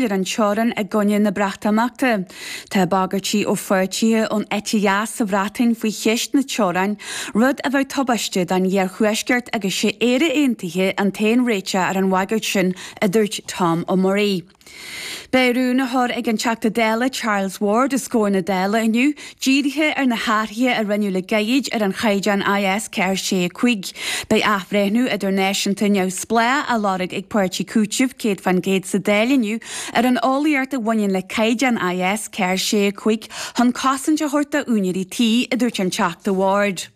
ar an teorainn i gcoinne na Breatimeachta. Tá bagairtí ó pháirtithe ón eite dheas sa Bhreatain faoi cheist na teorann, rud a bheadh tubáiste don iarthuaisceart agus sé Éire aontaithe an t-aon réiteach ar an bhagairt sin, a dúirt Tom Murray. Beidh rún á chur ag an Teachta Dála Charles Ward os comhair na Dála inniu Dírithe ar na hathruithe a rinneadh le gairid ar an chaighdeán IS 465, beidh athbhreithniú idirnáisiúnta neamhspleách á lorg ag páirtí Cúiteamh 100 faoin gcéad sa Dáil inniu ar an eolaíocht a bhaineann le caighdeán IS 465 chun cosaint a thabhairt d'úinéirí tí, a dúirt an Teachta Ward.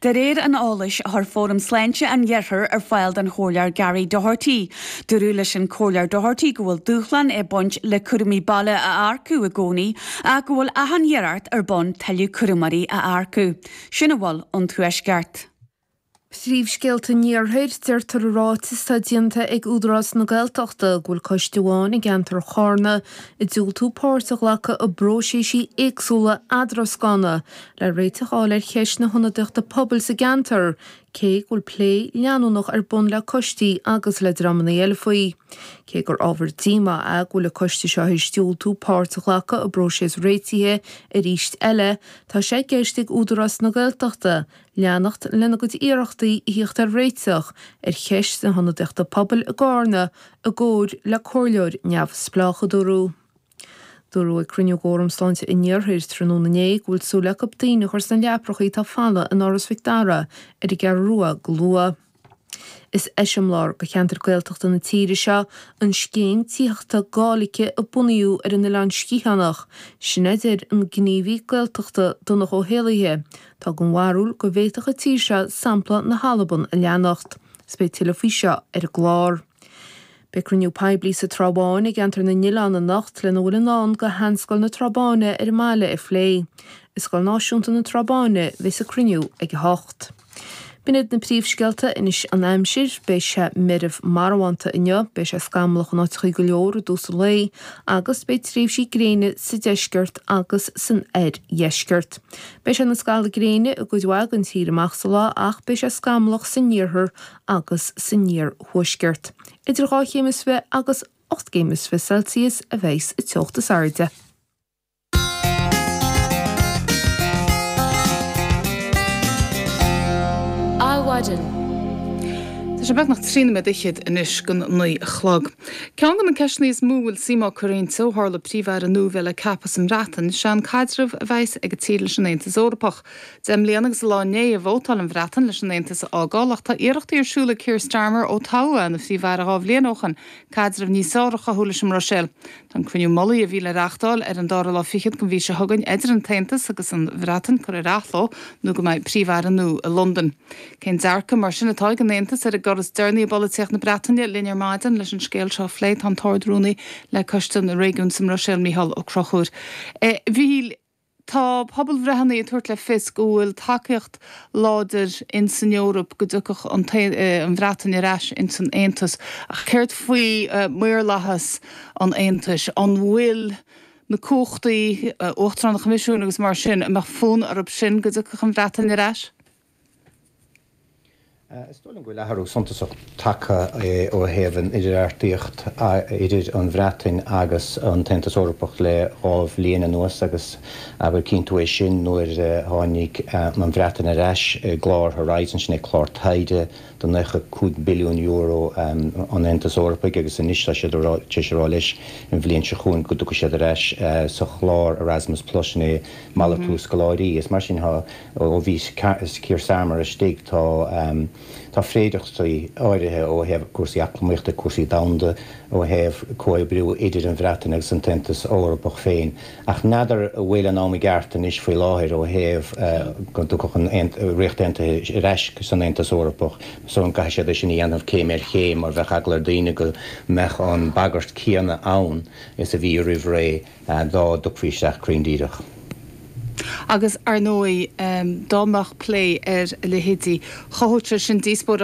De réir an eolais a chuir Fóram Sláinte an Iarthair ar fáil don Chomhairleoir Gary Doherty, dúradh leis an Comhairleoir Doherty go bhfuil dúshlán ag baint le cúramóirí baile a earcú i gcónaí ach go bhfuil achan iarracht ar bun tuilleadh cúramóirí a earcú. Sin a bhfuil ón Tuaisceart. Príomhscéalta an Iarthair. Deirtear i ráiteas atá déanta ag Údarás na Gaeltachta go bhfuil coiste amháin i gceantar Charna ag diúltú páirt a ghlacadh i bpróiséisí éagsúla eadrascána le réiteach a fháil ar cheist na hionadaíochta pobail sa gceantar, cé go bhfuil plé leanúnach ar bun le coistí agus le dreamanna eile faoi. Cé gur ábhar díomá é go bhfuil an coiste seo théis diúltú páirt a ghlacadh i bpróiseas réitithe arís eile, tá sé i gceist ag Údarás na Gaeltachta leanacht lena gcuid iarrachtaí a thíocht ar réiteach ar cheist na hionadaíochta pobail i gCarna i gcomhar le comhairleoir neamhspleách, a dúradh. Dúradh ag cruinniú d'Fhóram Sláinte an Iarthair tráthnóna inné go bhfuil súil acu daoine a chur sna leaprachaí atá folamh in Áras Mhic Dara ar an gCeathrú Rua go luath. Is eiseamláir do cheantair Gaeltachta na tíre seo an scéim tithíochta Gáidhlige a bunaíodh ar an Oileán Sgitheanach, sin a deir an gníomhaí Gaeltachta Donncha Ó hÉallaithe, atá den bharúil go bhféadfadh an tír seo sampla na hAlban a leanacht. Beidh tuilleadh faoi seo ar an gclár. Beidh cruinniú poiblí sa Trá Bháin i gCeantar na nOileán anocht lena bhfuil i ndán do Sheanscoil na Trá Báine ar an mbaile a phlé. I Scoil Náisiúnta na Trá Báine bheas an cruinniú ag 8. B'in iad na príomhscéalta. Anois an aimsir. Beidh sé meirbh marbhánta inniu. Beidh sé scamallach in áiteachaí go leor i dtús an lae agus beidh tréimhsí gréine sa deisceart agus san oirdheisceart. Beidh sé ina scalladh gréine i gcuid mhaith den tír amach sa lá ach beidh sé scamallach san iarthar agus san iarthuaisceart, idir 2 chéim is fiche agus 8 céim is fiche Celsius a bheas an teocht is airde. Adhmhaidin. Tá sé beagnach trí nóiméad fhichead anois go dtí an naoi a chlog. Ceann de na ceisteanna is mó a bhfuil suim á cur inti ó tharla Príomh-Aire nua a bheith le ceapadh sa mBreatain, ná cén caidreamh a bheas ag an tír leis an Aontas Eorpach. Deich mbliana agus a lá inné a vótáil an Bhreatain leis an Aontas a fhágáil, ach tá iarrachtaí ar siúl ag Keir Starmer ó toghadh é ina Phríomh-Aire dhá bhliain ó shin caidreamh níos fearr a chothú leis an mBruiséil. Tá an cruinniú mullaigh a bhí le reáchtáil ar an dara lá fichead den mhí seo chugainn idir an tAontas agus an Bhreatain curtha ar athló nó go mbeidh Príomh-Aire nua i Londain. Cén dearcadh mar sin atá ag an Aontas ar an gcor is deireanaí i bpolaitíocht na Breataine? Linn ar maidin leis an scéal seo a phlé tá an tArd-Rúnaí le Coiste na Réigiún sa mBruiséil, Mícheál Ó Conchúir. Tá pobalbhreitheannaí ag tabhairt le fios go bhfuil tacaíocht láidir in san Eoraip go dtiocfadh an Bhreatain ar ais ins an Aontas. Ach céard faoi mhaorlathas an Aontais? An bhfuil na cumhachtaí, Uachtarán an Choimisiúin agus mar sin, an mbeadh fonn orthu sin go dtiocfadh an Bhreatain ar ais? Is dóigh liom go bhfuil athrú suntasach tagtha ó thaobh an idirbheartaíocht idir an Bhreatain agus an tAontas Eorpach le dhá bhliain anuas agus gur cinntiú é sin nuair a tháinig an Bhreatain ar ais i gclár Horizon, sin é clár taighde de 95 billiún euro an Aontais Eorpaigh agus anois tá siad tar éis a rá leis an bhliain seo chugainn go dtiocfaidh siad ar ais sa chlár Erasmus Plus, sin é malartú scoláirí is mar sin. Ó bhí Keir Starmer istigh, tá féidearthachtaí áirithe ó thaobh cúrsaí eacnamaíochta, cúrsaí domhanda, ó thaobh comhoibriú idir an Bhreatain agus an tAontas Eorpach féin. Ach n'fheadar an bhfuil an am i gceart anois faoi láthair ó thaobh go dtiocfadh an Ríocht Aontaithe ar ais san Aontas Eorpach, so go gcaithfidh siad é sin a dhéanamh céim ar chéim mar bheadh eagla ar daoine go mbeadh an bagairt céanna ann is a bhí roimh ré. dá dtiocfaí isteach cruinn díreach. Agus, ar ndóigh, dá mbeadh plé ar a leithéid, chothódh sé sin díospóireacht.